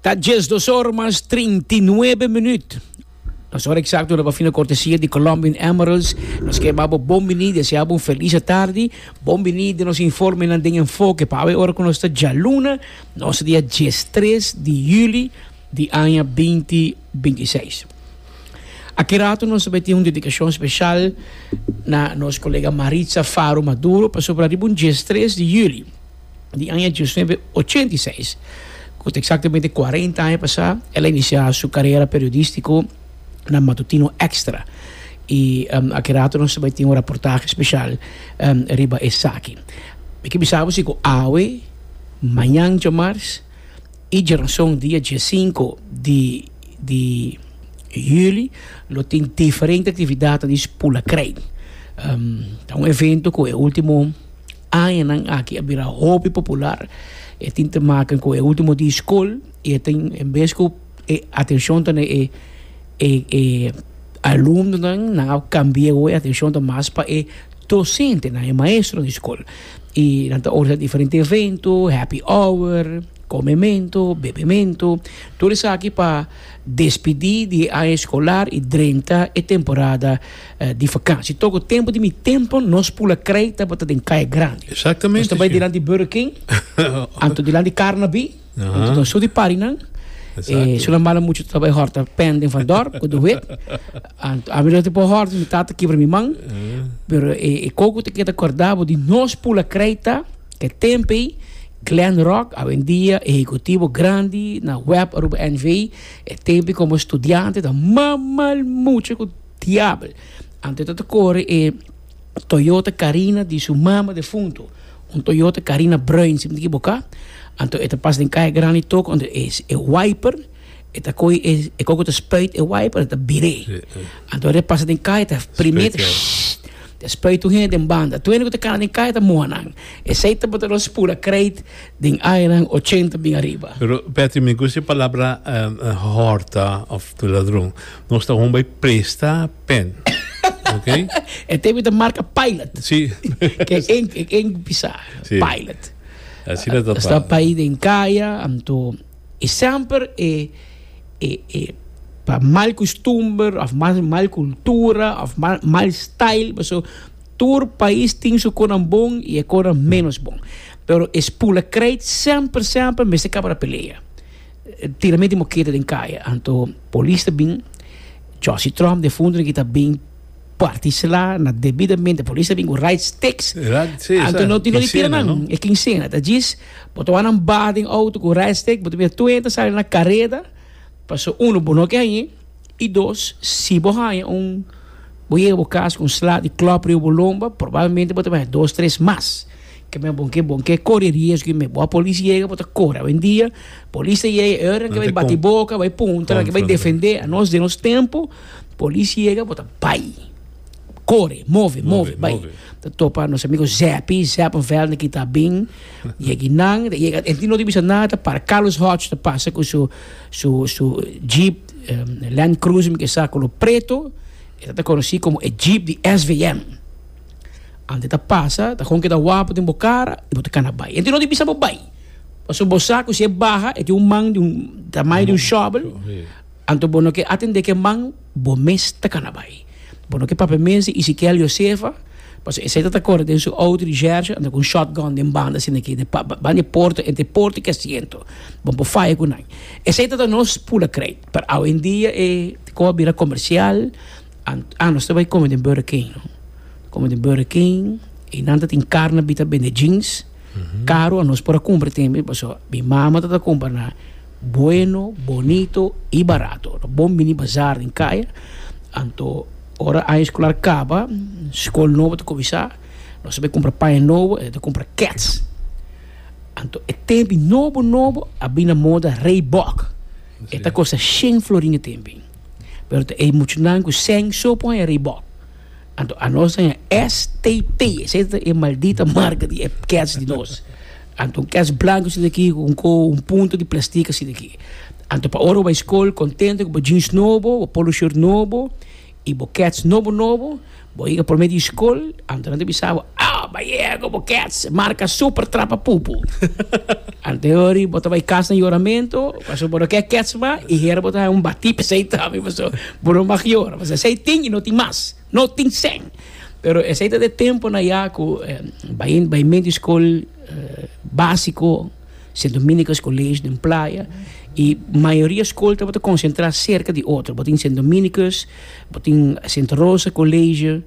Ta djes dos or mas trinti nuebe minut. Nos ora exacto na bafina cortesia di Colombian Emeralds. Nos ke babo bon bini, desea bon feliz tardi. Bon bini den nos informe nan den enfoke. Pa awe ora ku nos ta djaluna, nos dia djes tres di juli di aña binti binti seis. Aki rato nos ta tin un dedikashon speshal na nos kolega Maritza Faro Maduro pasobra riba un djes tres di juli. di aña dios nuebe ochenta i seis, cu ta exactamente cuarenta aña pasá, el a inicia su carera periodistico na Matutino Extra. I a ki rato nos ta bay tin un raportahe special riba esaki. Mi ke bisa bo si cu awe, mañan djamars i djeronson dia die sinku di di juli lo tin diferente actividadnan di Spulacrei. Ta un evento cu e ultimo. Añanan aki a bira hopi popular. E tin te maken ku e ultimo di skol i e tin en bes ku e atenshon ta na e e e alumnonan nan a kambia awor e atenshon ta mas pa e dosentenan e maestro di skol i nan ta organisa diferente evento happy hour komemento bebemento tur esaki pa despidi di e aña eskolar i drenta e temporada. di vakansi. Toko tempu di mi tempu nos pula krei tabata den Kaya Grandi. Exactamente. Nos ta bai dilanti Burger King, anto dilanti Carnaby, anto ta su di parinan. Exacto. E su nan bala mucho ta bai horta pen den van dorp, ku do wit. Anto ami no te po horta, mi tata kibra mi man. Pero e e koko te keda kordabo di nos pula krei ta ke tempi Glen Rock, awendia Ehecutivo Grandi, na web Aruba NV, e tempi como studiante ta mamal mucho ku Diabel. Ante ta ta kore e Toyota Carina di su mama defunto, un Toyota Carina bruin, si mi no ta ekiboká. Anto e ta pas den Kaya Grandi tok, anto e e wiper, e ta kohe e e koko ta spuit e wiper, ta bir'é. Anto ora e pasa den kaya ta primero ta shhh ta spuit un hende den banda. Tur hende ku ta kana den kaya ta moha nan. Esei tabata lo spura kreit den añanan ochenta bin ariba. Pero Petty, mi gusta e palabra horta of ladron. Nos ta hon bay presta pen. Ok? E tepe ta marca pilot. Sí. Ke en, ke en bisa. Sí. Pilot. Así na ta pa. Sta país den kaya, anto e semper e, e, e pa mal costumber of mal, mal cultura of mal, mal style. Paso tur país tin su conan bon y e conan menos bon. Pero e spulakrijt semper, semper mester caba na pelea. Tira mi di moketa den kaya. Anto polis ta bin chòsi tròm den fundu den kita bin parti sla na debidamente polis ta bin ku right sticks Right, sí, anto sa, no tin dónde tira kinsena, nan no? e kinsena ta djis bo ta wak nan ba den outo ku right stick bo ta bira tuenta sali na kareda paso uno bo no ke hañ'é i dos si bo haña un bo yega bo kas ku un sla di klòp riba bo lomba probablemente bo ta bin haña dos tres mas. Ke me bon ke bon ke kore riesgo i me bo a polis yega bo ta kore awendia polis ta yega e ora nan ke bai bati boka bai puntra nan ke bai defende a nos den nos tempo polis yega bo ta bai kore move move bai ta topa nos amigo zèpi zèppenveld ki ta bin yegi nan ta yega e tin no tin bisa nada ta para carlos hòch ta pasa ku su su su jeep land cruiser mi ke sa kolor preto e ta konosi komo e jeep di SVM. Antes ta pasa, ta kon keda wapu den bo kara y bo ta kana bai. Ente no di bisa bo bai, pasobra bo sa ku si e baha e tin un man di un tamaño di un shovel, anto bo no ke atende ke man, bo mes ta kana bai. Bo no ke papia mes di Isikiel Yosefa, pasobra esei tata kore den su outo di Jershi anda ku un shotgun den banda asina aki den banda e porta, entre porta i kasiento, bo por faya ku nan. Esei tata nos pula krèdito, pero awendia e kos a bira komersial. Ah nos ta bai come den Burger King no come den Burger King y nan ta tin carne bita bende jeans caro a nos por a cumpra tambe paso mi mama ta ta cumpra nan bueno bonito y barato lo bon bini bazar den caya anto ora aña escolar caba school nobo ta cuminsa nos ta bai cumpra paña nobo e ta cumpra kets anto e tempi nobo nobo a bini na moda Reebok e ta costa shen florin e tempi pero ta ey muchanan cu seng so pon e Reebok. Anto anos ta en STP, esey ta e maldita marca di e kets di nos. Anto un kets blanco asina aki cu un coho, un punto di plastic asina aki. Anto pa ora bo bay scol contento cu bo jeans nobo, bo polo shirt nobo y bo kets nobo nobo, Bo yega prome di skol, anto nan ta bisa bo, Oh, bai yego bo kèts, marka super trapa pupu. Anteori bo ta bai kas na yoramentu, pasobra bo no ke kèts mas, i hera bo ta haña un batí p'esei tambe, paso bo no mag yora, paso esei tin i no tin mas, no tin sèn. Pero esei ta den tempunan ya ku bai bai men di skol básiko. Sen Dominicus College den Playa y mayoria school tabata concentra cerca di otro. Bo tin Sen Dominicus, bo tin Santa Rosa College,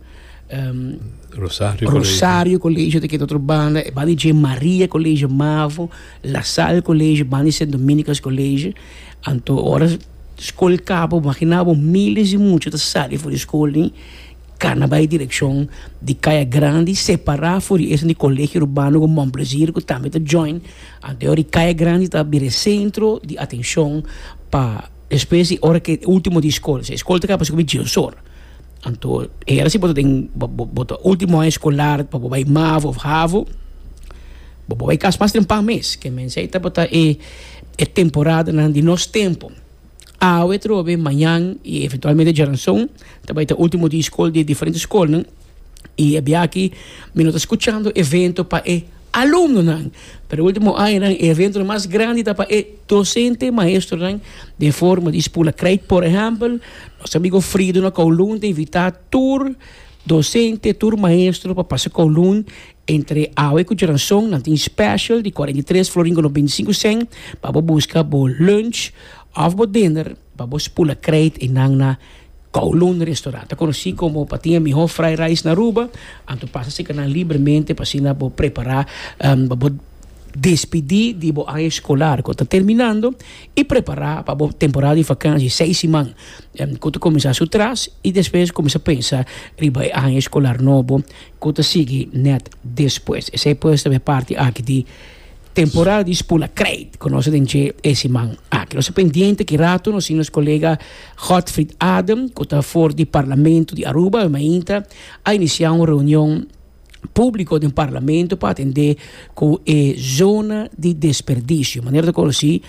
um, Rosario, Rosario College te otro banda, e banda J. Maria College Mavo, La Salle College, banda Sen Dominicus College. Anto ora school cabo, maginabo miles di mucha ta sali for di school ni. Cana bay direccion di Caya Grandi separa for di esun di Colegio Urbano cu Bon Plaisir cu tambe ta join anto di Caya Grandi ta bira e centro di atencion pa despues di ora cu ultimo di school esey school ta caba pasobra cu dies ora anto e hora si bo ta den bo ta ultimo aña escolar pa bo bay mavo of havo bo por bay cas mas temprano mes kende mensey tabata e temporadonan di nos tempo. Awe trobe, mañan y eventualmente djaranzon ta bay ta ultimo di school di diferente schoolnan y e biaaki mi no ta scuchando evento pa e alumnonan pero e ultimo añanan e eventonan mas grandi ta pa e docente y maestronan den forma di Spula Crape por ehempel nos ta bigo ofri duna kowloon ta invita tur docente tur maestro pa pasa kowloon Entre awe ku dranson nan tin special di cuarenta y tres florin ku nos binti sinku sen pa bo buska bo lunch of bo dinner pa bo spula kreit enan na Kowloon restaurant ta konosi komo pa tin e mihó fry rice na Aruba anto pasa sika nan libremente pa asina bo prepara pa bo despidi di bo aña escolar ku ta terminando i prepara pa bo temporada di vakanshi seis siman ku ta kuminsá su tras i despues kuminsá pensa riba e aña escolar nobo. Ku ta sigui nèt despues. Esei pues ta e parti aki di temporada di Spula Krijt ku nos a den dje e siman aki. Nos ta pendiente ki rato nos tin nos kolega Godfrid Adem ku ta for di Parlamento di Aruba, bai mainta a inicia un reunion publico den Parlamento pa atende ku e zona di desperdicio. Manera ta konosi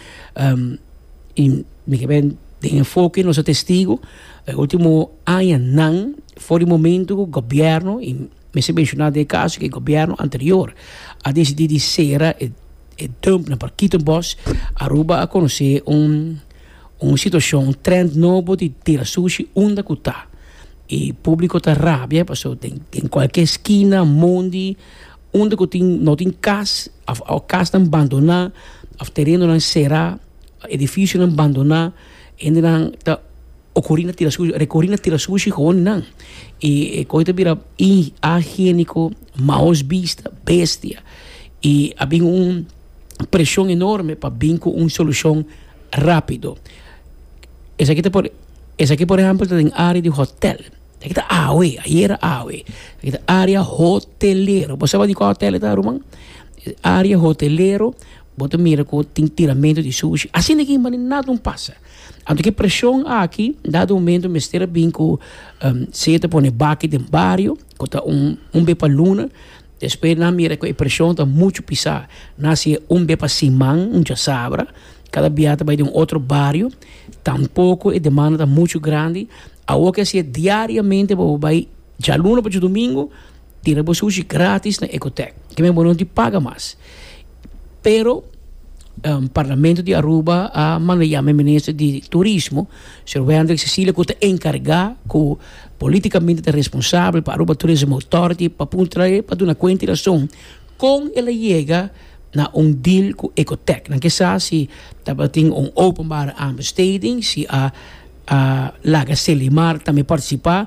i mi ke ben den enfoke nos a testigu e ultimo. añanan for di momento cu gobierno, y mester menciona den e caso cu e gobierno anterior a decidi di cera e dump nan pa Kito Bos, Aruba a conoce un situacion, un trend nobo di tira sushi unda cu ta. Y publico ta rabia paso den cualkier skina, mondi, unda cu tin no tin cas of casnan bandona of terenonan cera, edificionan bandona, hendenan ta. O kori na tira sushi, rekori na tira sushi gewoon nan. I e koi ta bira ahigiéniko, maos bista, bestia. I a bin un preshon enorme pa bin ku un solushon rápido. Esaki ta por, esaki por ehèmpel ta den área di hòtèl. Esaki ta awe, ayera a awe. Esaki ta área hotelero. Bo saba di kua hotèl e ta, ruman? Área hotelero, bo ta mira ku tin tiramentu di sushi. Asina aki maní nada un pasa. Anto ki preshon aki dado momento mester a bin ku se ta pone baki den bario ku ta un un be pa luna despues nan mira ku e preshon ta muchu pisá nan a siña un be pa siman un chasabra kada bia ta bai den un otro bario tampoko e demanda ta muchu grandi awor ke a siña diariamente bobo bai djaluna pa djaldomingo Tira bo sushi gratis na Ecotec. Ke men bo no di paga mas. Pero Parlamento di Aruba a manda yama e Minister di Turismo, Señor Wendrick Cecilia, ku ta enkargá ku politikamente ta responsabel pa Aruba Tourism Authority pa puntra trae pa duna kuenta i rason kon el a yega na un deal ku Ecotec. Nan ke sa si tabatin un openbare aanbesteding, si a laga Selimar tambe partisipá.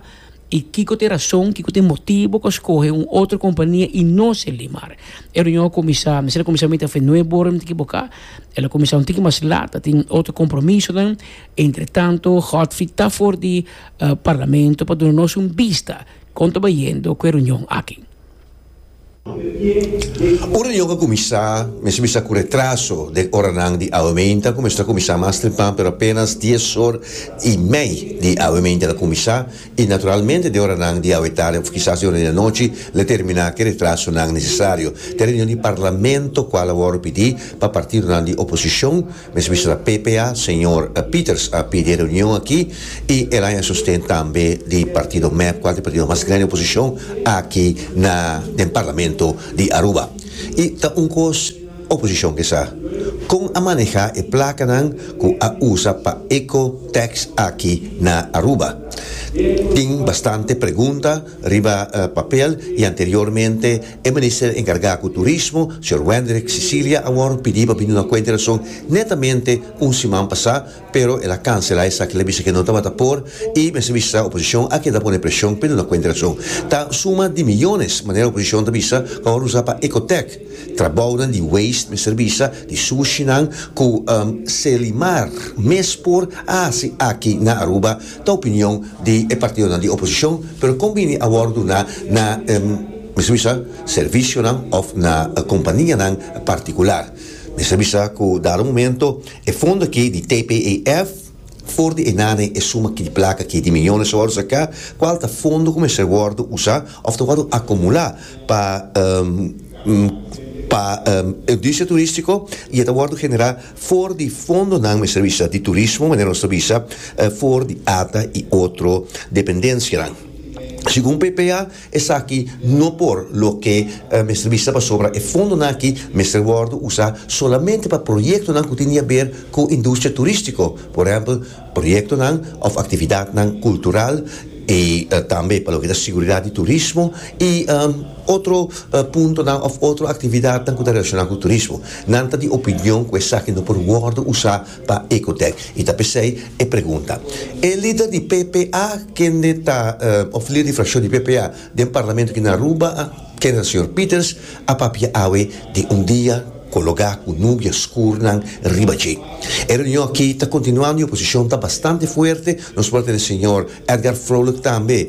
I kiko ta e rason, kiko ta e motibo ku a skohe un otro kompania i no ser Limar? E reunion a kuminsá, mester a kuminsá mienten afó e nue bora, mi ta ekiboká? El a kuminsá un tiki mas lat, a tin otro kompromisonan. Entretanto, Godfrey ta for di Parlamento pa duna nos un bista kon ta bayendo ku e reunion aki. Un reunion a kuminsá, mester bisa ku retraso den oranan di awemeinte ku mester a kuminsá mas temprán pero apénas dies or i mei di awemeinte el a kuminsá i naturalmente den oranan di awetarde òf kisas den ora di anochi el a terminá ke retrasonan nesesario. T'e reunion di parlamento kual a wòrdu pidi pa partidonan di oposishon Mes bisto na PPA, señor Peters a pidi e reunion aki y el a haña sosten tambe di partido mep, cual ta e partido mas grandi oposicion aki na den Parlamento di Aruba. Y ta un cos oposicion ke sa con a maneha e placanan cu a usa pa eco tax aki na Aruba. Tin bastante pregunta riba papel y anteriormente, E minister encarga cu Turismo, señor Wendrick Sicilia, awor pidi pa bini na cuenta di rason netamente un siman pasá, pero el a cancela esaki, el a bisa cu e no tabata por y mester bisa oposicion a keda pone presion pa e duna cuenta di rason. Ta suma di millones, manera oposicion ta bisa, cu awor usa pa Ecotec, trabounan di waste mester bisa di sushinan cu, um, Selimar mes por haci aki na Aruba, Ta opinion di e partidonan di oposicion, pero con bini a wordo na na mester bisa servicionan of na companianan particular. Mester bisa cu dado momento e fondo aki di TPEF for di e nanen e suma aki di placa aki di millones ta wordo saca, cual ta fondo cu mester wordo usa of ta wordo acumula pa pa industria turistico y e ta wordo genera. For di fondonan mester bisa di turismo, manera nos ta bisa for di ata i otro dependensianan. Segun PPA esaki no por loke mester bisa pasobra e fondonan aki mester wòrdu usá solamente pa proyektonan ku tin di haber ku industria turístiko, por ehèmpel, proyektonan òf aktividatnan kultural i tambe pa loke ta siguridat di turismo i otro puntonan òf otro aktividatnan ku ta relashoná ku turismo. Nan ta di opinion ku esaki no por wòrdu usá pa Ecotec i ta p'esei e pregunta. E lider di PPA kende ta òf lider di frakshon di PPA den Parlamento aki na Aruba a. Kenel Señor Peters a papia awe den un dia cu loga cu nubia scurnan riba dje. E reunion aki ta continua nu oposicion ta bastante fuerte, nos por a tene Señor Edgar Vrolijk tambe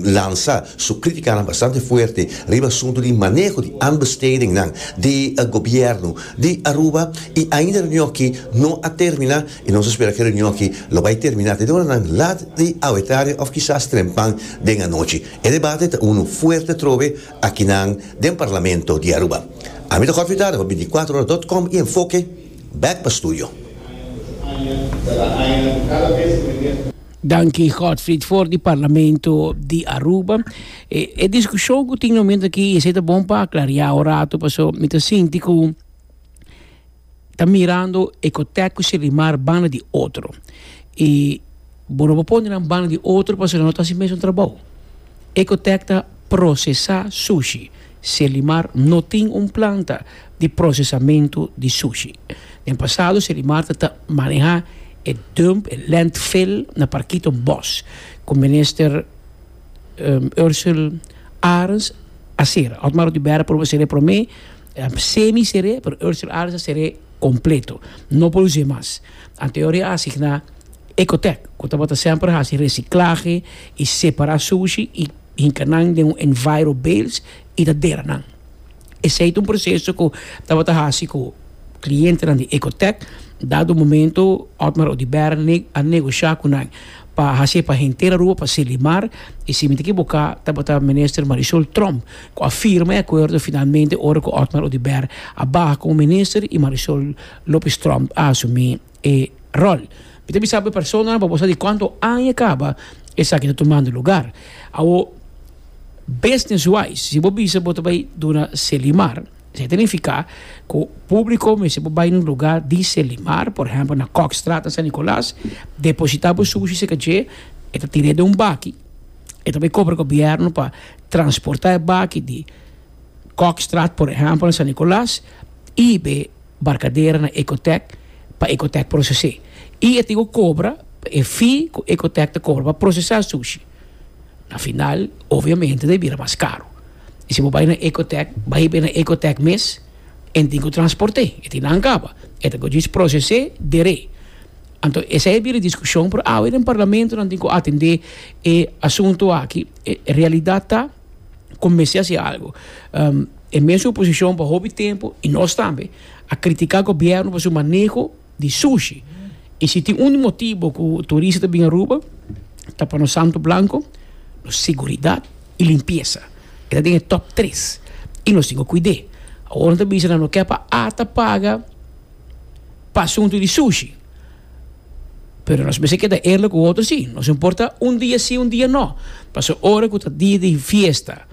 lansa su criticanan bastante fuerte riba asunto di maneho di aanbestedingnan di gobierno di Aruba y ainda e reunion aki no a termina y nos a spera cu e reunion aki lo bay termina te e oranan lat di awe tarde of kisas trempan den anochi. E debate ta unu fuerte trobe akinan den Parlamento di Aruba. Ami ta konfidado pa binticuatro ora dot com y Enfoke bek pa studio. Danki Godfried for di Parlamento di Aruba. E discusion cu tin na miento aki esey ta bon pa aclaria un rato paso mi ta sinti cu. ta mirando e kotekko shilimar banda di otro i bo no por pone nan banda di otro pasobra nan no ta hasi mesun trabou e kotek ta prosesá sushi shilimar no tin un planta di prosesamentu di sushi den pasado shilimar ta manehá e dump e lèntfil na parkito bòs ku minister Ursel Arens a sera otmar Oduber a purba a sera e promé A semi ser'é, pero Urser Islands a ser'é completo, no por us'é mas. Anteor e asigná Ecotec, cu tabata semper haci reciclahe y separa sushi y hinca nan den un enviro bales y ta dera nan. Esey ta un proceso cu tabata haci cu clientenan di Ecotec, dado un momento Otmar Oduber a negociá cu nan, pa hasi e pa henter Aruba pa sili mar y si mi ta ekiboká tabata Minister Marisol Tromp ku a firma e akuerdo finalmente ora ku Otmar Oduber a baha komo Minister y Marisol Lopez Tromp a asumí e ròl. Mi ta bisa bo e personanan pa bo sa di kuantu aña kaba esaki ta tumando lugar. Awo, business wise, si bo bisa bo ta bai duna seli mar, Esei ta nifiká ku públiko mester por bai na un lugá di Selimar, por ehèmpel na Kòkstraat, na San Nikolas, depositá bo sushi serka dje, e ta tir'é den un baki, e ta bai kobra gobièrnu pa transportá e baki di Kòkstraat, por ehèmpel, na San Nikolas i be Barkadera na Ecotèk pa Ecotèk proses'é. I e tin ku kobra e fee ku Ecotèk ta kobra pa prosesá e sushi. Na final, obviamente ta bira mas karu. Y si bo bay na Ecotec, bay bay na Ecotec mes, en tin cu transporte, e tin nan caba, e ta cogis procese dere. Anto esey a bira discusion, pero awe den Parlamento nan tin cu atende e asunto aki. E realidad ta cu mester haci algo. E mes oposicion pa hopi tempo, y nos tambe, a critica Gobierno pa su maneho. di sushi. I si tin un motibu ku turista ta bin Aruba ta pa nos Santo Blanco, nos seguridat i limpiesa. E ta den e top tres i nos tin ku kuid'é. Awor no ta bisa nan no ke pa ata paga pa asuntu di sushi, pero nos mester keda eerlik ku otro si. Nos no por ta un dia si un dia no. Pasobra ora ku ta dia di fiesta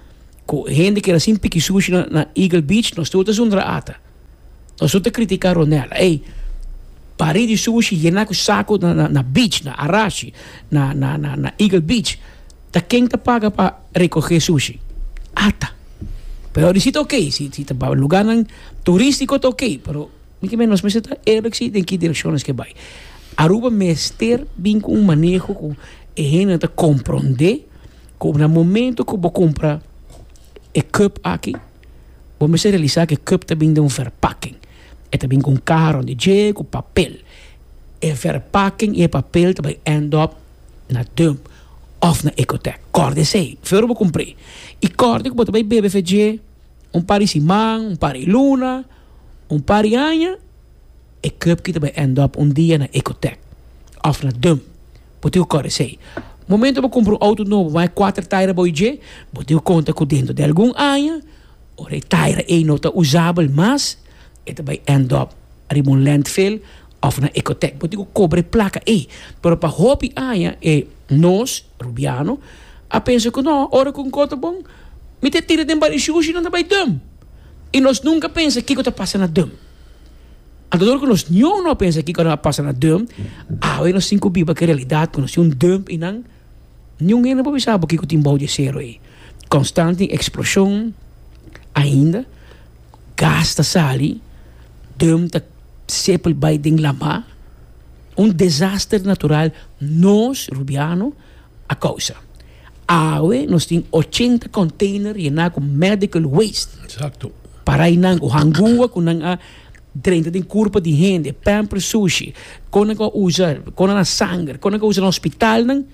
ku hende keda sin piki sushi na Eagle Beach nos tur ta zundra ata. Nos no ta critica Ronel, ey pari di sushi yena cu saco na beach, na Arashi, na Eagle Beach, ta ken ta paga pa recoge sushi? Ata. Peor di si ta ok, si ta pa lugarnan turistico ta ok, pero mi ke mester nos mester ta eerlijk si den ki direccion nos ke bay. Aruba mester bin cu un maneho cu e hende ta comprende cu na momento cu bo cumpra e cup aki, Bo mester realisa cu e cup ta bin den un verpakking. E ta bin cu un caha rond dje cu papel. E verpakking i e papel ta bay end up na dump of na Ecotec. Kòrda esey. Fe ora bo cumpr'é. I kòrda cu bo ta bay bebe fe dje un par di siman, un par di luna, un par di aña. E cup ki ta bai end up un dia na Ecotec of na Dum bo tin cu cor esey. Momento bo cumpra un auto nobo bo bay cuater taira bay dje bo tin cu conta cu dentro di algun aña ora e taira ey no ta usabel mas e ta bay end up riba un landfill of na Ecotec bo tin cu cobra e placa ey. Pero pa hopi aña e nos Rubiano a pensa cu no ora cu cor ta bon mi ta tira den Barishushi nan ta bay Dum y nos nunca pensa kico ta pasa na Dum. Antador ku nos niu no a pensa kiko lo a pasa na dum, awe nos tin ku biba ku e realidat ku nos tin un dum i nan niun hende no por bisa bo kiko tin bou di e sero ei. Konstante eksploshon ainda, gas ta sali, dum ta seple bai den lama, un desaster natural nos rubiano. A causa. Awe nos tin ochenta container yená cu medical waste. Exacto. Parainan cu hangua cu nan a drenta den curpa di hende, pamper sushi, con nan a usa, con nan a sanger, con nan a usa na hospitalnan,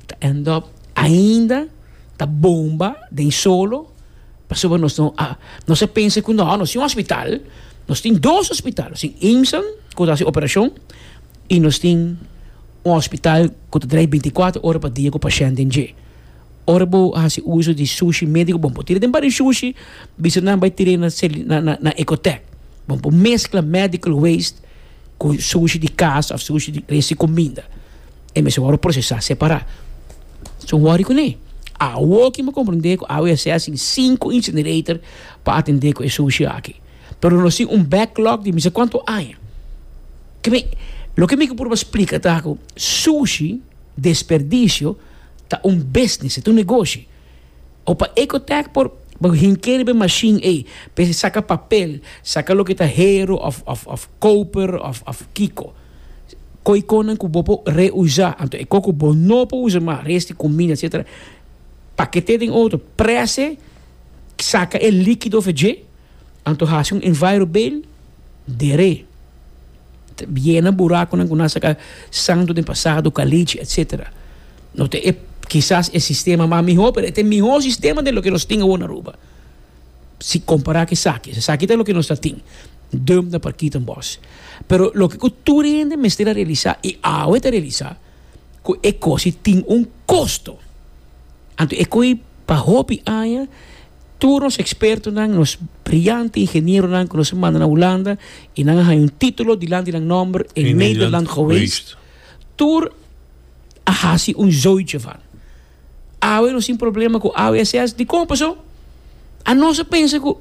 ta end up ainda ta bomba den solo pasobra nos no a, nos a pensa cu no, nos tin un hospital, nos tin dos hospital, nos tin IMSAN cu ta haci operacion, y nos tin un hospital cu ta draai binticuater ora pa dia cu pashenten dje. Ora bo haci uzo di sushi medico bon por tira den bario sushi bisa nan bay tira na celi na na na ecotec bon por mezcla medical waste cu sushi di casa of sushi di resti cuminda e mester wor procesa separa so worry cu ne awo ki mi comprende cu awo ya sea sin cinco incinerator pa atende cu e sushi aki. Pero nos tin un backlog di misa cuanto aña. Keme, loke mi ke purba splica ta cu sushi, desperdicio, ta un business, ta un negoshi. O pa Ecotech por hinkeri pa e machine ey, pa e saca papel, saca loke ta hero of, of, of koper, of, of kiko. Koy konan cu bo por reusa, anto e koy cu bo no por usa mas, resti cuminda, etcetera, pakete den otro, prese, saca e likido of e dje. Anto hasi un envirobale dere. Yena burakonan ku nan a saka santu den pasado, kalichi etsetera. No ta e, kisas e sistema mas mihó, pero e ta e mihó sistema den loke nos tin awor na Aruba, si kompará ku esaki. Esaki ta loke nos ta tin. Dump na Parkita en Bos. Pero loke ku tur e hende mester a realisá, i awe ta realisá, ku e kos ei tin un kosto. Anto e koe pa hopi aña tur nos ekspertonan, nos briante ingenieronan ku nos a manda na Hulanda i nan a haña un titulo dilanti di nan nòmber in Nederland geweest, tur a hasi un zootje van. Awe nos tin problema ku AWSS, dikon pasó? A nos a pensa ku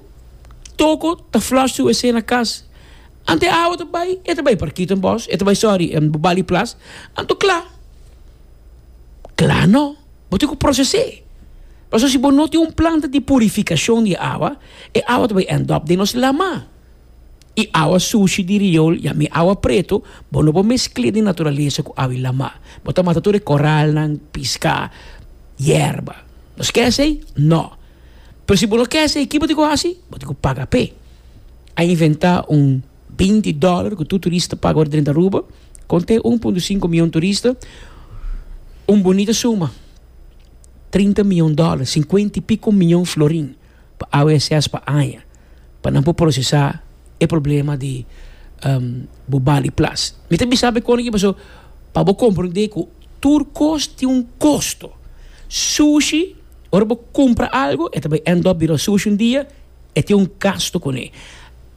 toko ta flush su wc na kas. Anto e awa ta bai? E ta bai Parkito Bos, e ta bai, sorry, Bobali Plas. Anto kla. Kla no, bo tin ku proses'é. Pasobra si bo no tin un planta di purifikashon di awa, e awa ta bin end up den nos lama. I awa sushi di riol i ami awa pretu bo no por meskl'é den naturalesa ku awi lama. Bo ta mata tur e koralnan, piska, yerba. Nos ke esei? No. Pero si bo no ke esei, kico bo tin ku hasi? Bo tin ku paga p'e. A inventá un. binti dòler ku tur turista paga ora drenta Aruba. Kon ta e un punto sinku mion turista? Un bunita suma. Trinta mion dòler, sinkuenta i piko mion florin pa AWSS pa aña, pa nan por prosesá e problema di bo bali plas. Mi ta bisa bo e kon aki pasobra pa bo komprondé ku tur kos tin un kosto. Sushi, ora bo kumpra algu, e ta bai end up bira sushi un dia, e tin un gastu kuné.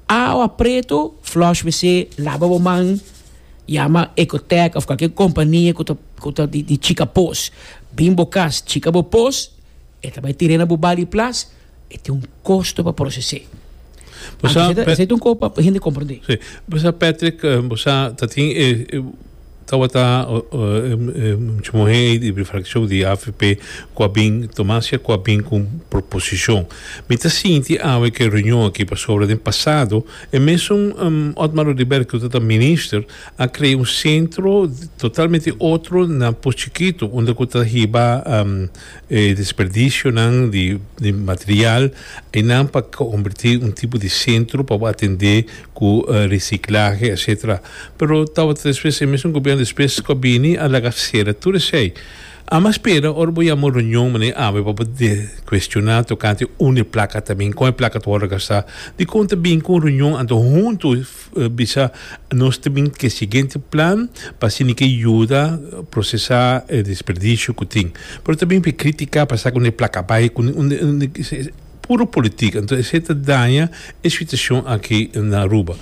Awa pretu, flush wc, laba bo man, yama Ecotec of cualkier compania cu ta cu ta di di chica pos, bin bo cas chica bo pos, e ta bay tire na bo bali plas, e tin un costo pa procese. Bo sa Anto esey ta esey ta un coho pa hende comprende. si, bo sa Patrick, bo sa ta tin e. Tawata mucha muhé ei di fraccion di avp cu a bin toma acia cu a bin cu un proposicion. Mi ta sinti awe cu e reunion aki pasobra den pasado e mesun Otmar Oduber cu ta ta minister a crea un centro totalmente otro na Potschiquito unda cu ta hiba E desperdisionan di material einan pa konbertí un tipo di sentro pa bo atendé ku resiklahe etsetera. Pero tabata despues e mesun gobièrnu despues ku a bini a laga sera tur esei. Amo a spera ora bo yama un reunion manera awe pa bo kuestioná tokante un e plaka ta bin, kon e plaka ta wòrdu gastá, dikon ta bin ku un reunion anto huntu. bisa nos ta bin ke siguiente plan pa asina ke yuda procesa e desperdicio ku tin pero ta bin pi critica pa sa ku ne placa bay ku puro politica enton esei ta daña e situacion aki na Aruba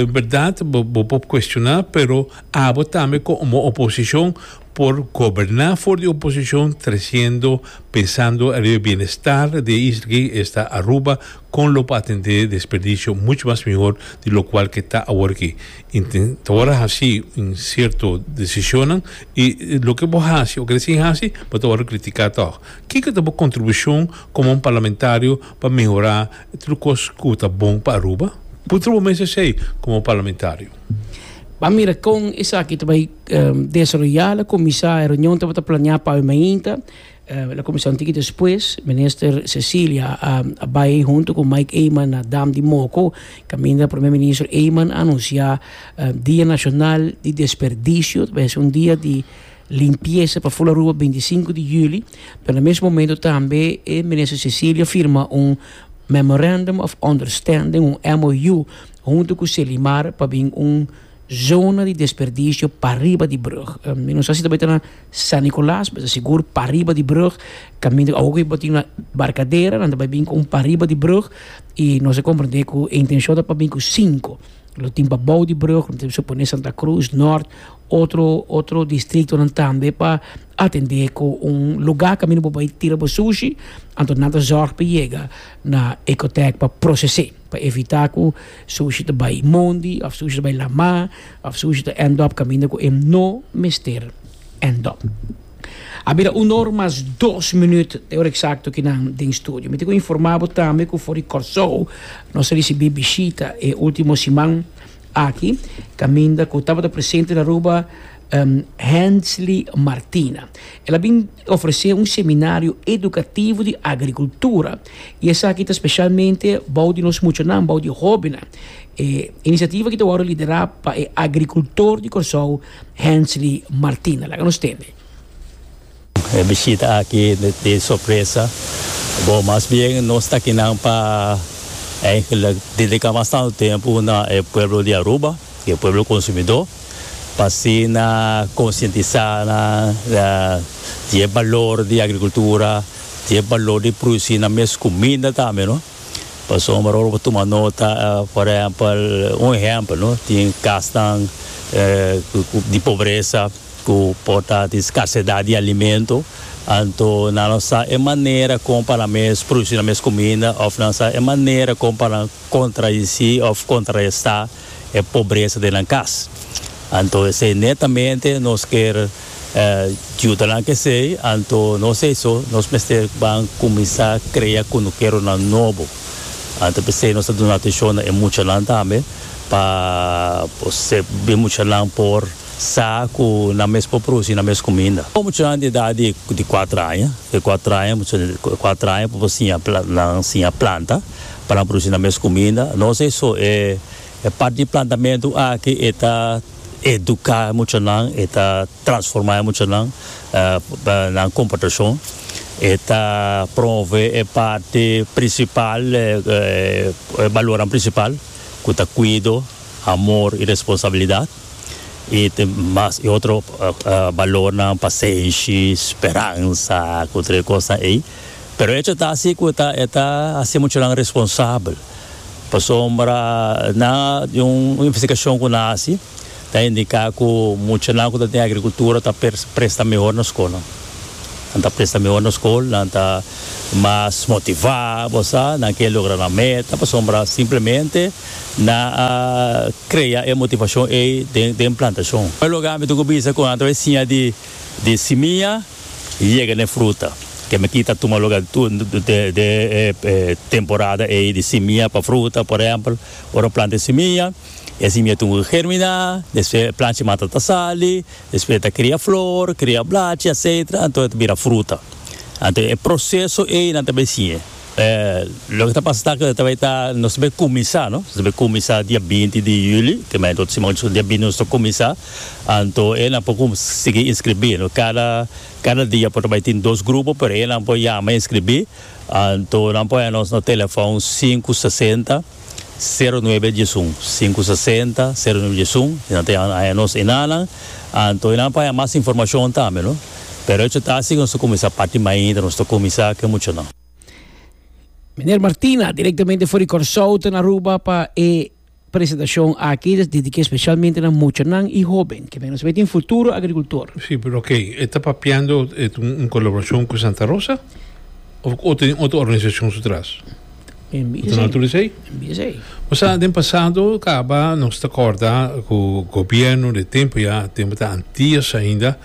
berdad bo por cuestiona pero abo tambe como oposicion por goberna for di oposicion treciendo pensando riba e bienestar di e isla aki esta Aruba. Con lo pa atende desperdicio mucho mas mihor di locual ke ta awor aki. Intenta awor haci un cierto decisionnan y loke bo haci o kere sin haci bo ta awor critica tog. Kiko ta bo contribucion como un parlamentario pa mehora tur e cos cu bo ta bon pa Aruba? Puntra bo mes esey como un parlamentario. Bo a mira con esaki ta bay desaroya, la cuminsa e reunion ta bo ta planea pa awe mainta. La kuminsá un tiki despues, minister Cecilia a bai huntu ku Mike Eman na dam di Moko, kaminda Prome Minister Eman a anunsiá Dia Nashonal di Desperdisio, ta bese un dia di limpiesa pa ful Aruba binti sinku di juli, pero na mes momento tambe e minister Cecilia firma un Memorandum of Understanding, un MOU, huntu ku Selimar pa bin un Zona di desperdicio pariba di brug. Mi no sa si ta bai ta na San Nicolas, pero ta sigur pariba di brug, caminda awor cu e botin na Barcadera, nan ta bai bin cu un pariba di brug y nos a comprende cu e intencion ta pa bin cu cinco. Lo tin pa bou di brug, lo tin supone Santa Cruz, Noord, otro otro distritonan tambe pa atende cu un lugar caminda bo bai tira bo sushi, anto nan ta zorg pa yega na Ecotec pa procese. Pa evitá ku Sushi ta bai mondi òf Sushi ta bai lamá òf Sushi ta ènd òp kaminda ku e no mester ènd òp. A bira un or mas dos minüt te ora eksakto ku nan den studio. Mi tin ku informá bo tambe ku for di Kòrsou nos a risibí bishita e último siman aki kaminda ku tabata presente na Aruba Hensly Martina. El a bin. Ofresé un seminario edukativo di agrikultura i esaki ta spesialmente bou di nos muchanan, bou di hóbennan. E inisiativa aki ta wòrdu liderá pa e agrikultor di Kòrsou, Hensley Martina. Laga nos tende. E bishita aki no ta tin sorpresa, bo mas bien nos ta kinan pa eihgelijk dediká bastante tempu na e pueblo di Aruba. di e pueblo consumidor pa asina concientisa nan di e balor di agricultura, di e balor di produci nan mes cuminda tambe no, pasobra ora bo tuma nota por ehempel un ehempel no tin casnan di pobreza cu por ta tin scarcedad di alimento anto nan lo sa e manera con pa nan mes produci nan mes cuminda of nan lo sa e manera con pa nan. contradeci of contraresta e pobresa den nan cas. Anto esey netamente nos kier juda nan ke sey, anto nos eso nos mester ban cuminsa crea cunukeronan nobo. Anto pesey nos ta duna atencion na e muchanan tambe pa e muchanan por sa cu nan mes por produci nan mes cuminda. Un muchanan di edad di cuatro aña, di cuatro aña, muchanan di cuatro aña por siña nan siña planta, pa nan produci nan mes cuminda. Nos eso e parti di plantamentu aki e ta educa e muchanan, e ta transforma e muchanan nan comportacion, e ta promove e parti principal, e balornan principal cu ta cuido, amor y responsabilidad y mas e otro balornan, pasenshi, speransa, cu otro e cosnan ey. Pero echo ta así cu e ta e ta haci muchanan responsabel, pasobra na di un investigacion cu nan a haci ta indica cu muchanan cu ta tin agricultura ta presta mihor na scolnan. Nan ta presta mihor na scol, nan ta mas motivá, bo sa, nan ke logra nan meta pasobra simplemente nan a crea e motivacion ey den plantacion. Primer lugar mi dun cu bisa cu nan ta bay siña di simia. yega n'e fruta. Ke mekí ta tuma luga den e temporada ei di simia pa fruta. Por ehèmpel, ora bo planta e simia, e simia tin ku germiná, despues e planchi mata ta sali, despues ta kria flor, kria blachi, etcetera, anto e ta bira fruta. Anto e proseso ei nan ta besiña. Loke ta pasa ta ku ta bai ta nos ta bai kuminsá no, nos ta bai kuminsá dia binti di yuli, ke manera otro siman nos dia binti nos ta kuminsá, anto e nan por sigui inskribí no, kada kada dia por ta bai tin dos grupo pero e nan por yama e inskribí, anto nan por haya nos na telefòn sinku sesenta. Sero nuebe djesun, sinku sesenta, sero nuebe djesun, e nan ta yama nan añanos enanan, anto e nan pa haña mas informashon tambe no, pero echo ta asi ku nos ta kuminsá parti mainta, nos ta kuminsá ku e muchanan. Miner Martina, direktamente for di Kòrsou, ta na Aruba pa e presentashon aki, ta dediké speshalmente na muchanan i hóben, kimen nos sabé tin futuro agrikultor. Sí, pero ke e ta papiando e ta un kolaborashon ku Santa Rosa òf ta den otro organisashon su tras? Bo ta nota esei? Bo sa, den pasado kaba nos ta kòrda ku gobièrnu den tempu ya, tempu ta antias ainda,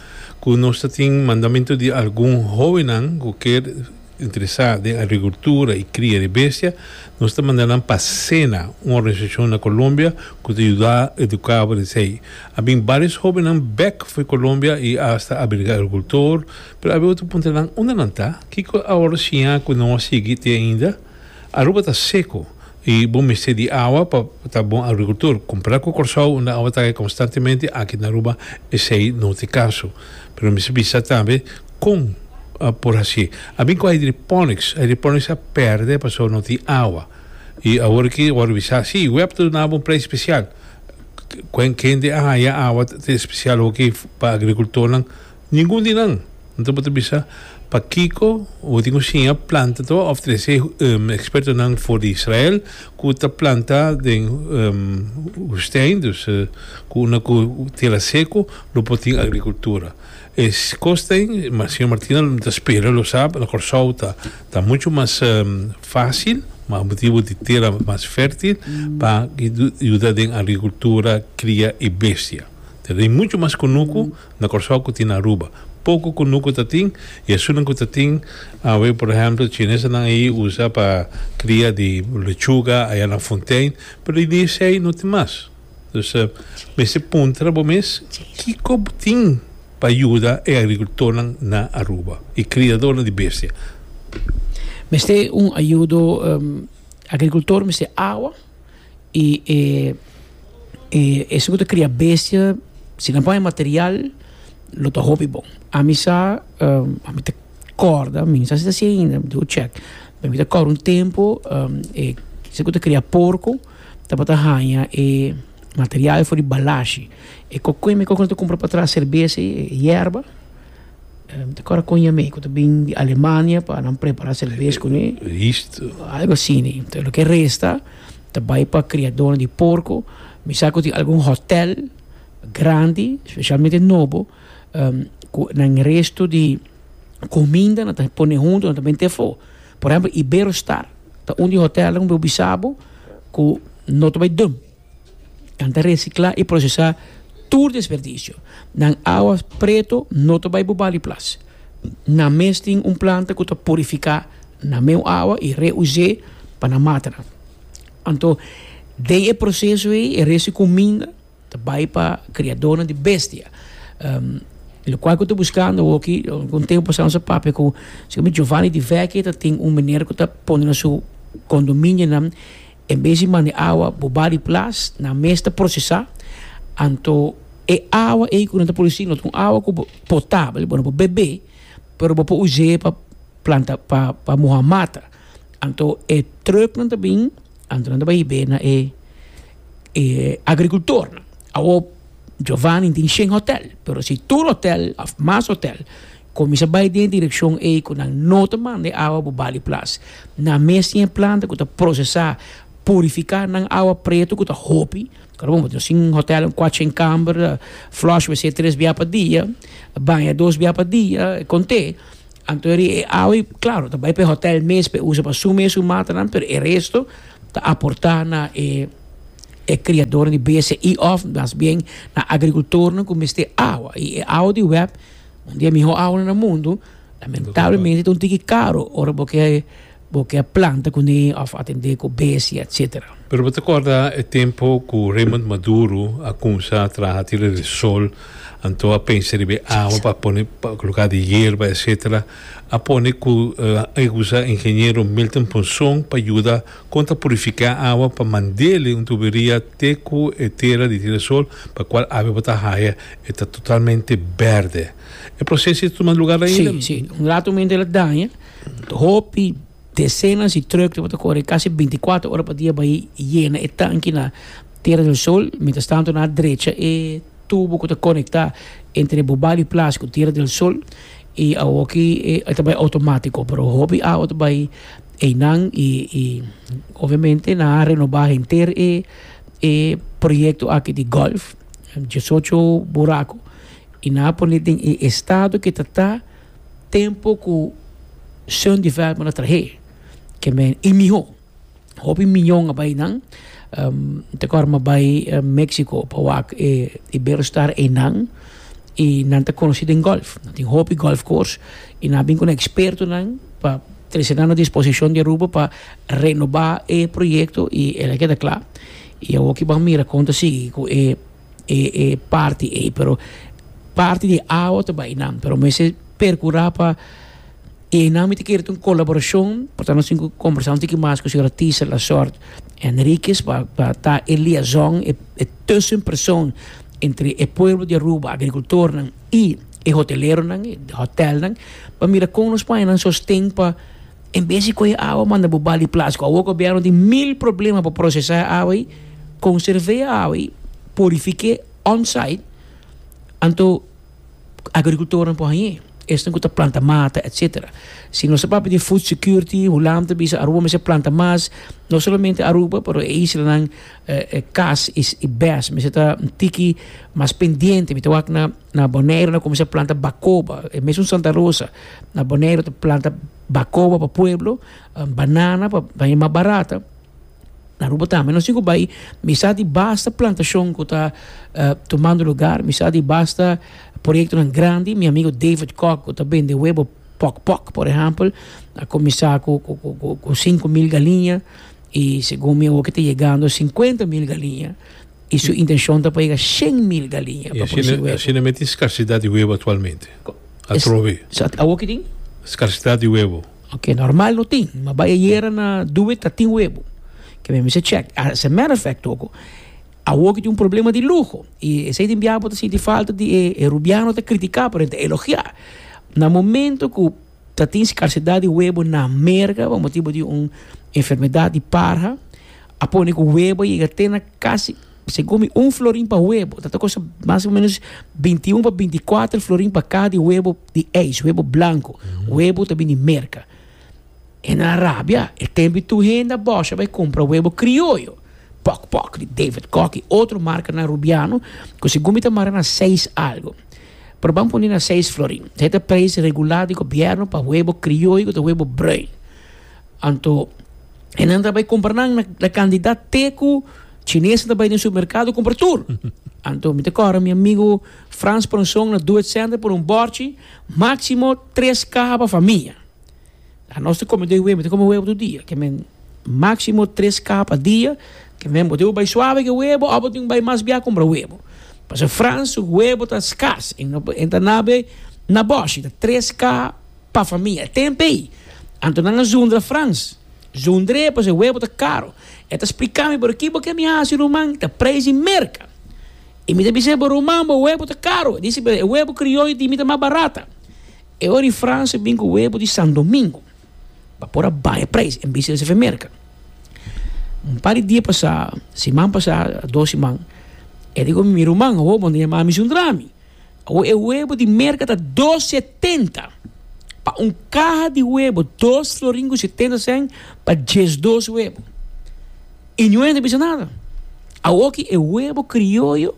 ku nos ta tin mandamentu di algun hóbennan ku kier interesá den agrikultura i kria di bestia, nos ta manda nan pa Sena, un organisashon na Colombia ku ta yuda eduká bo di esei. A bin bários hóbennan bèk for Colombia i asta a birga agrikultor, Pero abia otro punta nan unda nan ta? Kiko awor siña ku no a sigui te ainda? Aruba ta seko i bo mester di awa pa ta bon agrikultor. Kompara ku Kòrsou unda awa ta kai konstantemente aki na Aruba esei no te kaso. Pero mester bisa tambe kon por hasi. A bin ku hydroponics, hydroponics a pèrdè pasobra no tin awa. I awor aki a wòrdu bisa si we hab ta duna bo un preis spesial. Kende a haña awa te spesial hopi pa agrikultornan Ningun di nan. Anto bo ta bisa pakiko bo tin ku siña planta ta ba òfrese e ekspertonan for di Israel ku ta planta den wustèn, dus ku unda ku tera seku lo por tin agrikultura. E kos den, Señor Martina mi ta spera lo sa, na Kòrsou ta muchu mas fásil pa motibu di tera mas fèrtil pa yuda den agrikultura, kria i bestia. Ta den muchu mas kunuku. na Kòrsou ku tin na Aruba. Poko kunuku ta tin i esunnan ku ta tin awe por ehèmpel chinesenan ei usa pa kria di lechuga aya na Fontein pero di dia esei no tin mas. Dus mester puntra bo mes kiko bo tin pa yuda e agrikultornan na Aruba i kriadornan di bestia. Mester un ayudo agrikultor mester awa. Y e e esey cu ta cria bestia si nan pone material lo ta hopi bon. Ami sa ami ta corda mi sa si ta si ainda mi debe check pero mi ta corda un tempo e esey cu ta cria porco tabata haya e material for di balashi e coco y mi coco nan ta cumpra patras cerveza y yerba. Ta kora kon yam'é ku ta bin di Alemania pa nan prepara serves kuné. Algu asini. Lo ke resta ta bai pa kriadónan di porko. Mi sa ku tin algun hotèl grandi, spesialmente nobo, ku nan restu di kuminda nan ta pone huntu, nan ta mete afó. Por ehèmpel Iberostar ta un di hotèlnan ku mi a bisa bo ku no ta bai dùm. Nan ta resiclá i procesá tur desperdicio. Nan awa preto no ta bai bobal di plas. Nan mes tin un planta cu ta purificá nan meu awa i reus'é pa nan mata nan. Anto den e proceso ei e resti cuminda ta bai pa criadornan di bestia. Locual cu ta buscando awoki, algun tempo pasá nos a papia cu Giovanni di Vecchi ta tin un meneer cu ta pone na su condominionan. En bes di manda e awa bo ba di plas, nan mes ta prosesá. Anto e awa ei ku nan ta produsí no ta un awa ku potabel, bo no por bebé, pero bo por us'é pa planta, pa muha mata. Anto e trùknan ta bin, anto nan ta bai hib'é na e e agrikultornan. Awor, Giovanni tin shen hòtèl, pero si tur hòtèl òf mas hòtèl. Kuminsá bai den e direkshon ei ku nan no ta manda e awa bo bali plas. Nan mes tin e planta ku ta prosesá, purifiká nan awa pretu ku ta hopi. Ora bo ta sin hòtèl un kuatshen kamber, flòsh wc tres bia pa dia, baña dos bia pa dia, kont'é. Anto e awa ei, klaru, ta bai pa e hòtèl mes pa e usa pa su mes, su matanan, pero e resto ta aportá na e e kriadornan di BSI òf mas bien na agrikultornan ku mester awa. I e awa di wèp Un di e mihó aula na mundu, lamentablemente ta un tiki karu ora bo ke bo ke planta kuné òf atendé ku besti etsetera. Pero bo ta kòrda e tempu ku Raymond Maduro a kuminsá traha tira di sol, anto a pensa riba e awa pa pone pa luká di yerba etsetera, a pone ku a usa ingeniero Milton Ponson pa yuda. Kon ta purifiká awa pa mand'é un tuberia te ku e tera di Tira Sol pa kual awe bo ta haya e ta totalmente bèrdè. E proseso i ta tuma lugá ainda. Sí, sí. Un ratu mente el a daña. Hopi desenas di trùk lo bo ta kore kasi binti kuater ora pa dia bai yena e tanki na Tera del Sol. Mientras tanto nan a drecha e tubo ku ta konektá entre Bobali Plaza ku Tira del Sol i awoki e ta bai outomatiko pero hopi awa ta bai. Einan y y obviamente nan a renoba henter e e proyecto aki di golf, diesocho buraco, y nan a pone den e estado ke ta ta tempo ku Sun Development a trahe, ke men y miho. Hopi miñon a bay einan, mi ta acorda mi a bay Mexico pa wak e Iberostar einan y nan ta conoci den golf, nan tin hopi golf course y nan a bin cu nan expertonan pa Trece nan no disposicion di e rubo pa renoba e proyecto y el a keda cla. Y awor ki ban mira con ta sigui cu e e parti ey pero parti di awa ta bay nan pero mester percura pa y eynan mi ta kere ta un colaboracion portanto nos tin cu conbersa un tiki mas cu señor Artisa Lazort Henriquez pa pa ta e liaison e tussen person entre e pueblo di Aruba agricultornan y e hoteleronan, e hotelnan, pa mira kon nos paña nan sosten pa en bes di kohe awa manda bo bal di plas, ku awoka bierno tin mil problema pa prosesá e awa ei, konserv'é e awa ei, purifik'é on-site, anto agrikultornan por hañ'é, esnan ku ta planta mata etcetera. Si nos ta papia di food security, Hulam ta bisa Aruba mester planta mas, no solamente Aruba pero e islanan, Kas i Bes mester ta un tiki mas pendiente, mi ta wak na Na Boneiru nan kuminsá planta bakoba, e mesun Santa Rosa. Na Boneiru ta planta bakoba pa pueblo, banana pa baña mas barata. Na Aruba tambe nos tin ku bai, mi sa di basta plantashon ku ta tumando lugar, mi sa di basta proyektonan grandi. Mi amigu David Kok ku ta bende webo Pok Pok, por ehèmpel, a kuminsá ku sinku mil galiña i segun mi awo ke ta yegando sinkuenta mil galiña. I su intencion ta pa yega shen mil galiña pa produci huevo. I asina mester tin scarcidad di huevo actualmente atrobe. Awo ki tin? Scarcidad di huevo. Ok, normal no tin, ma bai ayera na Due ta tin huevo. Ke mi a bisa check. As a matter of fact oko, awo ki tin un problema di luho. I esei tin biaha bo ta sinti falta di e rubiano ta critica, pero e ta elogia. Na momento ku. Ta tin skarsidat di webo na Merga pa motibu di un enfermedat di parha. A pone ku webo a yega te na kasi, segun mi, un florin pa webo. Ta ta kosta mas o menos bintiun pa bintikuater florin pa kaha di webo di eis, webo blanku. Webo ta bini Merka. E nan a rabia. E tempi tur hende a bòs a bai kumpra webo krioyo. Pòk pòk di David Kok i otro markanan rubiano ku segun mi ta mara na seis algu. Pero ban pone na seis florin. Esei ta preis regular di gobierno pa huebo crioy cu ta huebo bruin. Anto e nan ta bay compra nan na na cantidad te cu chineses ta bay den supermercado compra tur. Anto mi ta corda mi amigo Frans Ponson na Doet Center por un bordchi maximo tres caha pa famia. A nos ta come den web, mi ta come webo tur dia, ke men maximo tres ka pa dia, ke men bo debe bai suave ke webo o bo tin bai mas bia compra webo. Pasobra Frans su webo ta skas e no e ta na be na boshi, ta tres ka pa famia, e tempe ei. Anto nan a zundra Frans, zundr'e pasobra e webo ta caro. E ta splica mi, pero ki bo ke mi haci ruman? Ta prijs di merca. I mi ta bisa e bo, ruman, bo webo ta caro. E dici, pero e webo crioyo di mi ta mas barata. E ora di Frans e bin ku webo di San Domingo pa por a baña preis en bisa di Sevemerka. Un par di dia pasá, siman pasá, dos siman, e di ku mi, mi ruman, awo bo ta yama mi suntra mi. Awo e webo di merka ta dos setenta pa un kaha di webo, dos florin ku setenta sèn pa diesdos webo. I niun hende a bisa nada. Awoki e webo krioyo.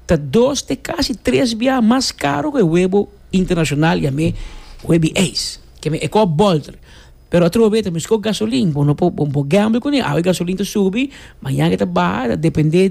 ta dos te casi tres biaha mas caro cu e webo internacional ya me webi eis ke me e cop bolter pero a trobe ta mi sco gasolin bo no por bo gamble cune awe gasolin ta subi mañana ta baha ta depende di.